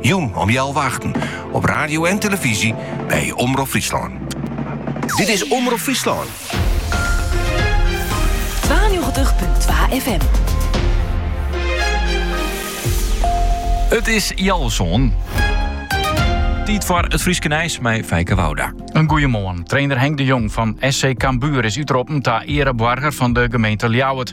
Jûn om healwei-achten op radio en tillefyzje by Omrop Fryslân. Dit is Omrop Fryslân. 92.2 FM. It is heal sân. Tiid foar it Fryske Nijs mei Feike Wouda. In goeie moarn. Trainer Henk de Jong fan SC Cambuur is útroppen ta eareboarger fan de gemeente Ljouwert.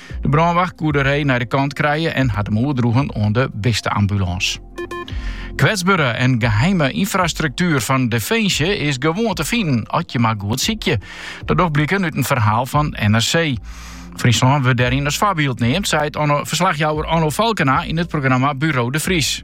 De brânwacht koe de ree nei de kant krije en hat him oerdroegen oan de bisteambulâns. Kwetsbere en geheime ynfrastruktuer fan Definsje is gewoan te finen as je mar goed sykje. Dat docht bliken út in ferhaal fan NRC. Fryslân wurdt dêryn as foarbyld neamd, seit verslachjouwer Onno Falkena yn it programma Buro de Vries.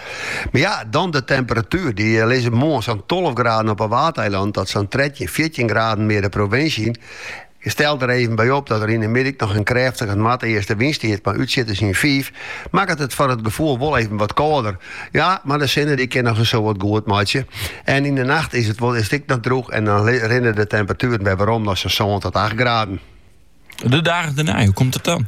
Mar ja, dan de temperatuer. Dy lizze moarn sa'n tolve graden op 'e Waadeilannen tot sa'n trettjin, fjirtjin graden mear de provinsje yn. Tel der even by op dat der yn 'e middei noch in krêftige noardeastenwyn stiet, mei útsjitters yn fiif, makket it foar it gefoel wol even wat kâlder. Ja, mar de sinne dy kin noch in soad goed meitsje. En yn 'e nacht is it wol earst ek noch drûch en dan rinne de temperatueren wer werom nei sa'n sân tot acht graden. De dagen dêrnei, hoe komt dat dan?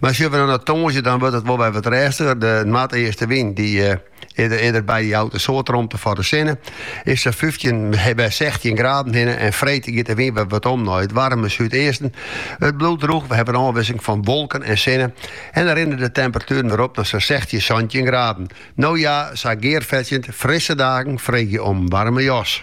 Mar sjoch we no na tongersdei, dan wurdt it wol wer wat rêstiger. De noardeastenwyn dy earder by jout in soad romte foar de sinne. Is sa fyftjin, wer sechstjin graden hinne en freed giet de wyn wer wat om nei it waarme súdeasten. It bliuwt drûch, we hawwe ôfwisseling fan wolken en sinne en dan rinne de temperatueren wer op nei sa sechstjin, santjin graden. No ja, sa gearfetsjend, frisse dagen freegje om in waarme jas.